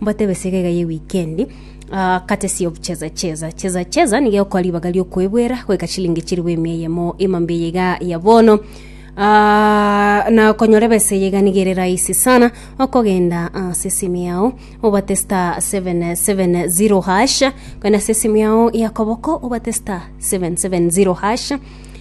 Mbatebe ase egaiga ye wikendi, ah, courtesy of Cheza Cheza. Cheza Cheza nigo egokoa ribaga riokoebwera goika chilingi chiribu emia eyemo ime mbe eye iga ya bono. Ah, na konyora ebesa eye iga nigo ere rahisi sana okogenda ase esimu yao obate star 770 hash kogenda ase esimu yao ya koboko obate star 770 hash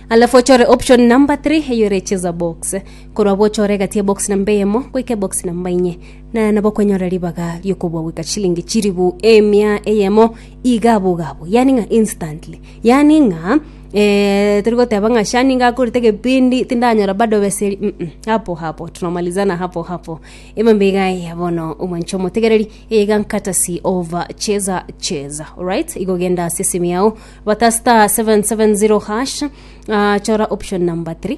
alafu ochore option number 3 eyo ere cheza box korwa bochore egati ya box namba eyemo goika ebox namba inye na nabokonyora ribaga ri'okobua goika chilingi chilifu emia eyemo iga boigo abwo, yaani ng'a instantly, yaani ng'a eh, tori goteba ng'a sha ninga akorete egepindi tindanyora bado besa eria mm hapo hapo tunamalizana hapo hapo emambe iga aya bono omwancha omotegereri iga courtesy of cheza cheza alright igo genda ase esimi yao bata star 770 hash ah, chora option number 3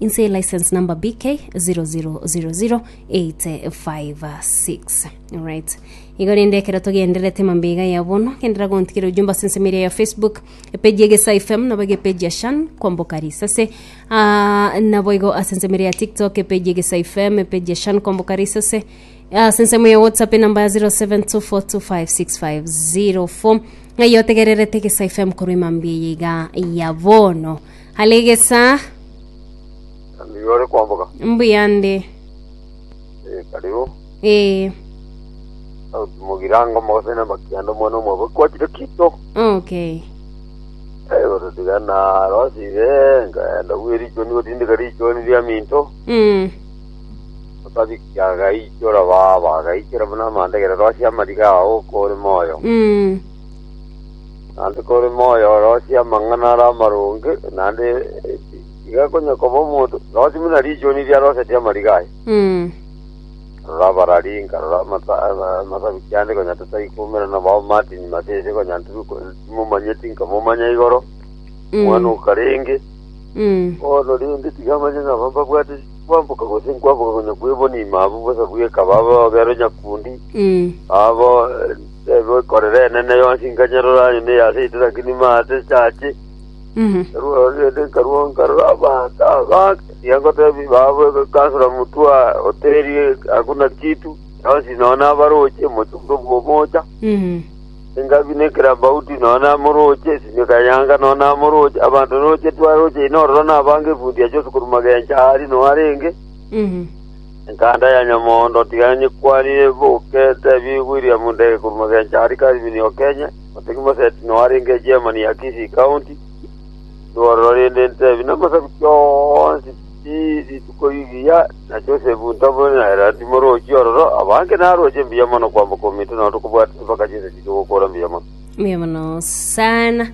Inse license number BK 0000856 right igo rende ekero togenderete mambega ya bono gendera gontikira ujumba sense media ya facebook epeji egesa fm nabo egepeji ya shan kwamboka risase Ah, nabo igo asense media ya tiktok epeji egesa fm epeji ya shan kwamboka risase Ah, sense ya whatsapp enamba ya 0724256504 ng'ai otegererete egesa fm korwa emambia yeiga ya bono Alegesa, Nigo ore kwamboka. mbuya nde. Eh, karibu. Ee, Sauti mogirango mogose na makianda omwana omwabo kwachire kito. okay. Eh, gototiga na rosi be ngaenda gwe richoni gotindika richoni ria minto. Mm, Otabikia agaichora baba agaichora buna amandegere rosi amariga ao kore moyo. mm, Naende kore moyo orosie amang'ana are amaronge, naende iga konya koba omonto, rosie buna richuni riarosetie amariga aye. Mm. Rora abararinga, rora amasa- ama- amasabiki ande konya tatari koumera nabao Martin Masese konya ntiri ko- timomanyeti nkamomanya igoro, Mm. mwana okarenge, Mm. bono rende tiga amanye ng'a aba mbabwate kwamboka gose nkwamboka konya kwebonima abwo bosa bweka baba babero nyakundi, Mm. abo eh, Negoikorera enene yonsi nkanyerora ime ya seito lakini maate chache. Nkarwao rende nkarwao nkarora amato aba tiga ngotebi babo egoikansora mutwa oteri hakuna kitu yonsi nonya nabaroche mochunge bwomocha engabi nekerambauti nonya namoroche esimeka yanga nonya namoroche abanto roche twaroche inorora nabange efundi ache osukuruma gencha ari nonya arenge Enkanda ya nyamondo tigani kwarire boke tebiwi William Ndege korwa Magencho aria Calvin Okenye otegi Moseti no arenge chairman ya Kisii county riborero rinde ntebi namasabiti onsi pi rituko rigiya na Joseph Ntobo na Herald Morochi ororo abange naroche mbuya mono kwamboka ominto nao tokobwate chibaka chinsa chiria ogokora mbuya mono mbuya mono sana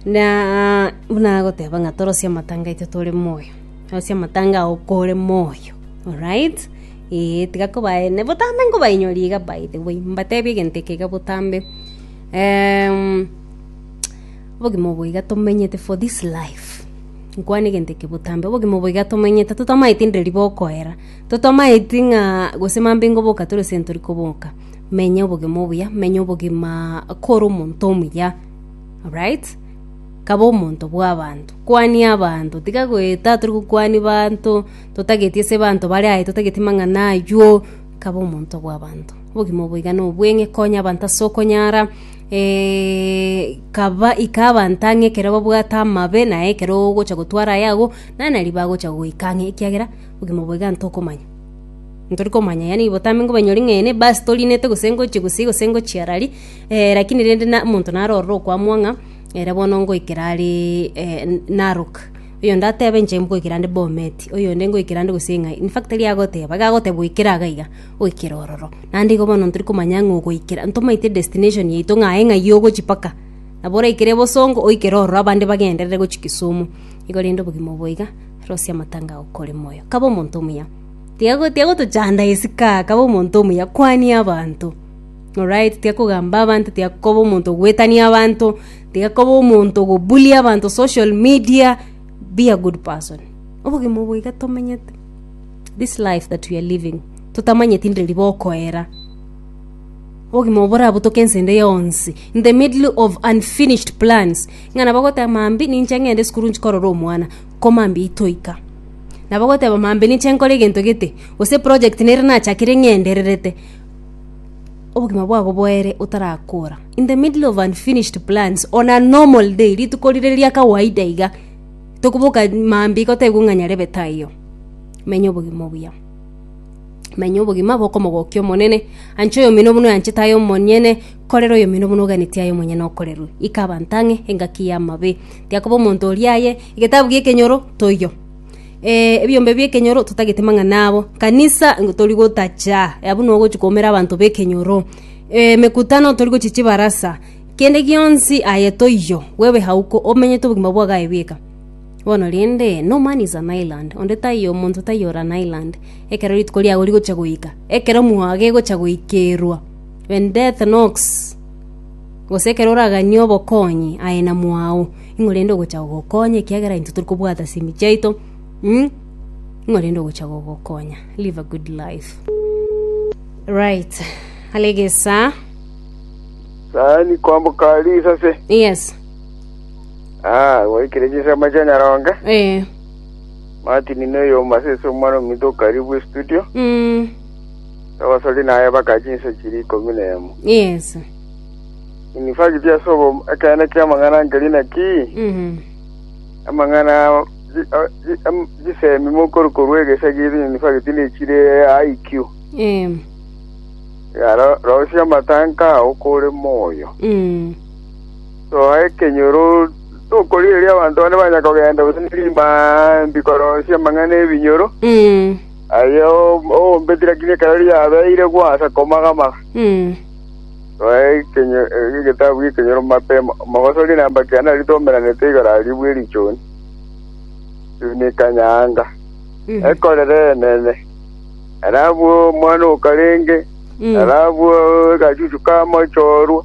na buna agoteba ng'a torosie amatanga aito tore moyo Ase amatango ao kore moyo, alright? Ee, tiga kobaene botambe nkobainyori iga by the way, mbatebie egento eke iga botambe. Em, obogima obo iga tomenyete for this life, nkwane egento eke botambe, obogima obo iga tomenyete totamaeti ndire ribokoera, totamaeti ng'a gose mambe ngoboka tore gose ntori koboka. Menya obogima obuya, menya obogima kore omonto omuya, alright? Kaba omonto bw'abanto, kwania abanto, tiga goeta tori gokwania abanto, totageti ase abanto bare aye, totageti amang'ana ayio, kaba omonto bw'abanto. Obogima obo iga nobweng'e, konya abanto ase okonyara, kaba ika abanto ang'e ekero babwate amabe, naye ekero ogocha gotwara aye agwo, nare nari bagocha goika ang'e ekiagera obogima obo iga ntokomanya. Ntori komanya yaani botambe nkobanyori ng'a ene ebasi torinete gose ngochie gusii gose ngochie arari, lakini rende na omonto naro ororo okoamwa ng'a. Ere bono ngoikera are Narok, oyonde atebe inche ngoikera nde Bomet, oyonde ngoikera nde gose ng'ai. In fact tari agoteba, iga agoteba oikere iga iga, oikere ororo. Naende igo bono tori komanya ng'a ogoikera, ntomaite destination yaito ng'a aye ng'ai ogochia mpaka. Nabo oraikere bosongo oikere ororo abande bagenderere gochia Kisumu. Igo rende obogima obo iga, Rose amatanga ao kore moyo. Kaba omonto omuya. Tiago tiagotochanda isiko aa, kaba omonto omuya, kwania abanto. Oraeti tiga kogamba abanto, tiga koba omonto ogoetania abanto, tiga koba omonto ogobuli abanto social media, be a good person. Obogima obo iga tomenyete, this life that we are living, totamanyeti ndire riba okoera. Obogima obo borabutoke ense ende yonsi, in the middle of unfinished plans, ng'a nabo ogoteba mambia ninche ng'ende esukuru ninche korora omwana, ko mambia itoika. Nabo ogoteba mambia ninche nkore egento gete, gose eproject nere nachakire ng'endererete. obogima bwabo boere otarakora in the middle of unfinished plans on a normal day rituko rire ria kawaida iga tokoboka mambi gotegwa ng'a nyarebe taiyo menya obogima obuya menya obogima bokomogokia omonene anche oyomino buna oyanchete aye omonyene korera oyomino buna oganetie aye omonyene okorerwe ika abanto ang'e engaki y'amabe tiakoba omonto oria aye egetabu gi'ekenyoro toiyo Eh, ebiombe biekenyoro totagete mang'ana abo kanisa ngo tori gotacha abwo no gochi koumera abanto bekenyoro eh, mekutano tori gochi chibarasa kende gionsi aye toiyo wewe hauko omenyete obogima bwa gaye bweka bono rende no man is an island onde taiyo omonto taiyo ore an island ekero rituko riago rigocha goika ekero mwago egocha goikerwa when death knocks gose ekero oraganie obokonyi aye na mwao Ing'o rende ogocha gogokonya ekiagera intwe tori kobwata ase emechie yaito? Mh? Ing'o rende ogocha gogokonya? Live a good life. Right. Hale egesaa. Sani kwamboka risase. Yes. Ah, waikire chisema cha nyaronge. Eh. Martin no yo masese omwana ominto karibu studio. Mm. Abasori naye bakaji insa chiri 11. Yes. Inwe fagiti ase obomo, ekeene ki'amang'ana ankeria naki? Amang'ana chisemi mokoria korwa egesa giaito inwe fagiti nechire IQ. Rosia amatanka ao kore moyo. Soa ekenyoro tokorigereria abanto bane banya kogenda gose ne rimambi korosia amang'ana ebinyoro. Aye oombe tirakinia ekero riabeire gwasa komagamaga. Roa ekenyo- eh, egetabu g'ekenyoro mapema, omogosori na mbaki yane aritomeranete igoro aria bw'erichuni chuni kanyanga, ekorere enene. Ere abwo omwana okarenge, ere abwo agachuchu kamochorwa,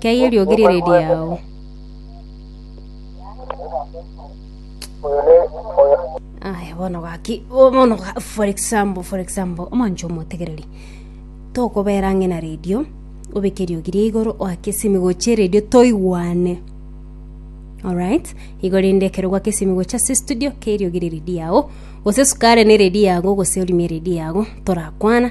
Kei eriogi rire riao. Aya bono gaki bo- bono ga- for example for example omonche omotegereri tokobera ang'e na redio obeke eriogi ria igoro oake esimi gochia eredio toigwane alright igo rende ekero gwake esimi gochia ase estudio kei eriogi riri riao gose sukari nere riago gose orimie riri yago torakwana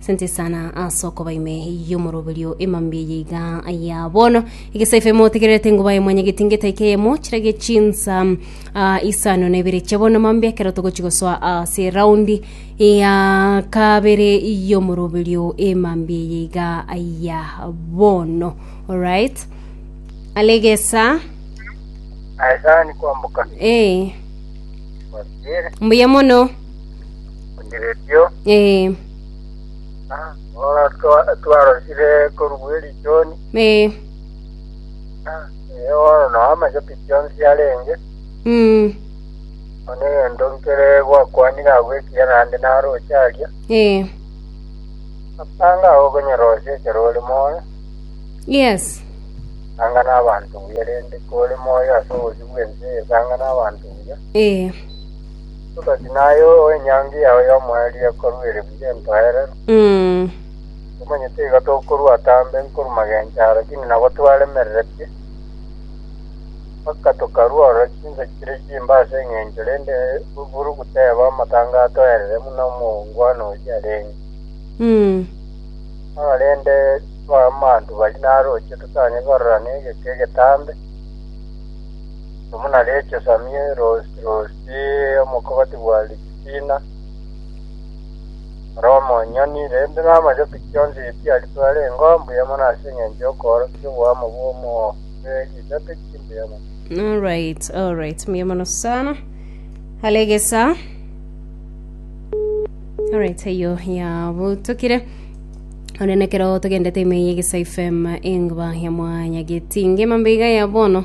Asante sana ase okoba ime y'omoroberio emambia eye iga aya bono egesaifa emo otegererete ngo baye mwanya getingeta ike emo chirage chinsa ah, isano na ibere chia bono mambia ekero togochi gosoa ase raundi ya kabere y'omoroberio emambia eye iga aya bono alright alegesa Aesani kwambuka eh, kwasire mbuya mono Onyererio, ee, ah, ora twa- twarosire korugwa erichoni, ee, ah, eh, oro no amachopi chionsi arenge, mm, one egento nkere gwakwanire agwo ekiya naende naroche aria, ee, apanga ago okonyerosia ekero ore moyo, yes, anga n'abanto buya rende kore moyo ase obosio bw'ense eye, anga n'abanto buya, ee, Omosacha naye ow'enyangi yao y'omweli ekorua ere buya entoerero, Mm. omanyete iga tokorua atambe nkorwa magencho aa, lakini nabo twaremereretie, mpaka tokarua ororo chinsa chire chimbe ase engencho, rende buru goteba amatanga atoerere buna omongwana oyio arenge. Mm. Bono rende abamantu baria naroche totang'e kororana egeka egetambe, amo na Recho, Samie, Rosi, Rosi. Ee, omokogoti bwa ritina, ore omonyoni, rende namachoki chionsi chiaritwe arenge oo mbuya mono ase engencho y'okoorokia oboamo bw'omooreri risato ki mbuya mono. Alright, alright, mbuya mono sana. Hale gesa. Alright, eyo yabutukire. Onenekero togendete ime yegesa FM engba ya mwanya getinge mambiga ya bono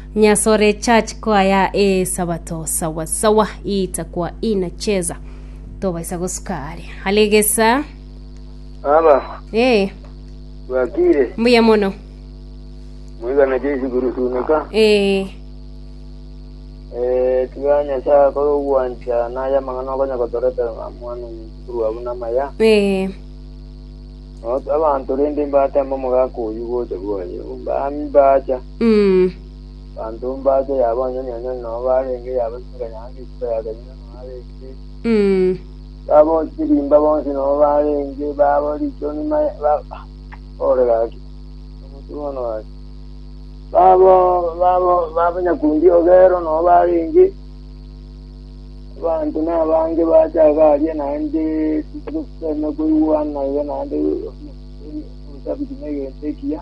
Nyasore church choir ee sabato sawa sawa itakwa inacheza tobaisa gosuka are alegesa Baba, ee bwakire mbuya mono mwigana Jesu kurusunika ee eh tiga Nyasaye akore ogwancha naye amang'ana okonya gotorete mwana omukuru abu namaya ee Not- abantu rende mbatemba omogaka oyu gocha bwaye mbacha Abanto mbache yabonyonyonya nonya nobo arenge yabasinga nyanga isiko ya Galilaya nonya arenge, babochie chirimba bonsi nonya nobo arenge, babo richoni maye ba- ah, ore gaki, omonto bono ore. Babo babo babo nyakundi ogero nonya barenge, abanto nabange bache iga aria naende koigwana iga naende obusabuti na egento ekiya.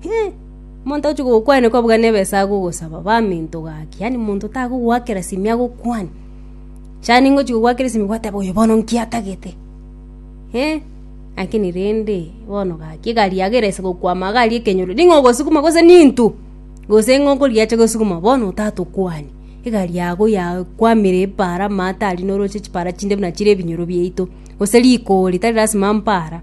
Hee! Omonto ogochia gokwania kobuga nebe ase agogosaba baminto gaki, yaani monto tagogoakera simi agokwanie. Chani ngochia gogoakera esimi gwateba oyo bono nkiatagete. Hee! Lakini rende bono gaki egari yago erase gokwama iga aria ekenyoro ning'o ogosukuma gose ninto gose ng'o okoriacha gosukuma bono otagete okwanie. Egari yago yakwamire epaara amaate aria noroche chipara chinde buna chire ebinyoro biaito, gose rikoori tari lasima mpara.